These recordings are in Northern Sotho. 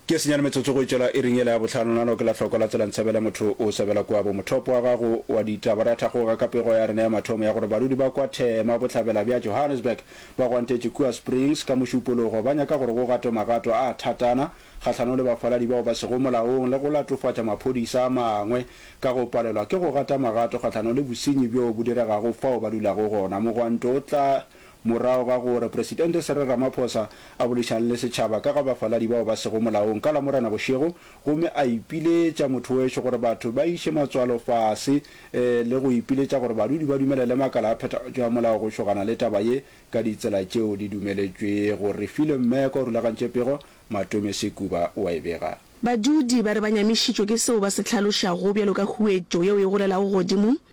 Ke senyane metsotso go itšela iring yela ya bohlano nalo ke la hloko la tsela ntsebele motho o sebela kwa bo mothopo wa gago wa ditaba ra thagoga ka pego ya rena ya mathomo ya gore badudi ba kwa thema bohlabela bja Johannesburg ba gwantetše kua Springs ka mošupologo ba nyaka gore go gatwe magato a thatana kgahlano le bafaladi bao ba sego molaong le go latofatša maphodisa a mangwe ka go palelwa ke go gata magato kgahlano le bosenyi bjo bo diregago fao ba dulago gona mogwanto o tla morago ga gore Presidente Cyril Ramaphosa a boledišane le setšhaba ka ga bafaladi bao ba sego molaong ka Lamorena bošego gomme a ipiletša mothoweso gore batho ba iše matswalo fase le go ipiletša gore badudi ba dumelele makala a phethagatšo ya molao go šogana le taba ye ka ditsela tšeo di dumeletšwego. Refilwe Mmeko o rulagantše pego, Matome Sekuba o a e bega. Badudi ba re ba nyamišitšwe ke seo ba se hlalošago bjalo ka huetšo yeo e golelago godimo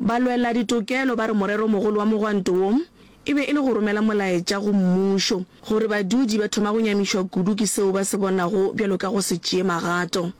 Balweladitokelo ba re moreromogolo wa mogwanto wo e be e le go romela molaetša go mmušo gore badudi ba thoma go nyamišwa kudu ke seo ba se bonago bjalo ka go se tšee magato.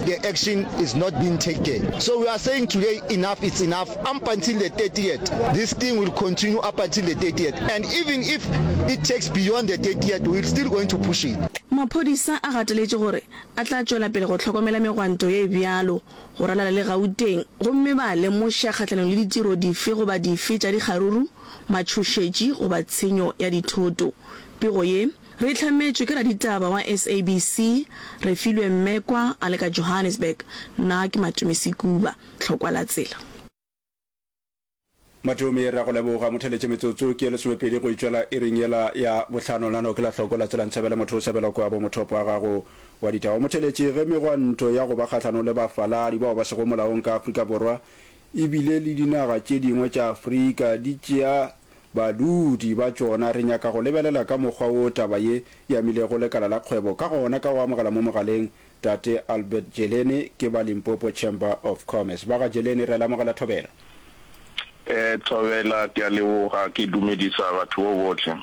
the action is not being taken so we are saying today enough it's enough up until the 30th this thing will continue up until the 30th and even if it takes beyond the 30th we're still going to push it Maphodisa a gateletše gore a tla tšwela pele go hlokomela megwanto ye bjalo go ralala le Gauteng gomme ba lemoša kgahlanong le ditiro dife goba dife tša dikgaruru, matšhošetši goba tshenyo ya dithoto. Pego ye. Re hlametšwe ke raditaba wa SABC, Refilwe Mmekwa a le ka Johannesburg. Nna ke Matome Sekuba, tlhokwa la tsela. Matome, re a go leboga. Mo theletše metsotso ke ye lesomepedi go e tšwela iring yela ya bohlano. Nano ke la tlhoko la tsela Nthabela motho o sebela kwa bo mothopo wa gago wa ditaba. Mo theletše ge megwanto ya go ba kgahlanong le bafaladi bao ba sego molaong ka Afrika Borwa e bile le dinaga tše dingwe tša Afrika di tšea Badudi ba tšona, re nyaka go lebelela ka mokgwa wo taba ye e amilego lekala la kgwebo ka gona ka go amogela mo mogaleng Tate Albert Jeleni ke ba Limpopo Chamber of Commerce. Ba ga Jeleni, re a le amogela thobela. Thobela, ke a leboga, ke dumedisa batho bo bohle.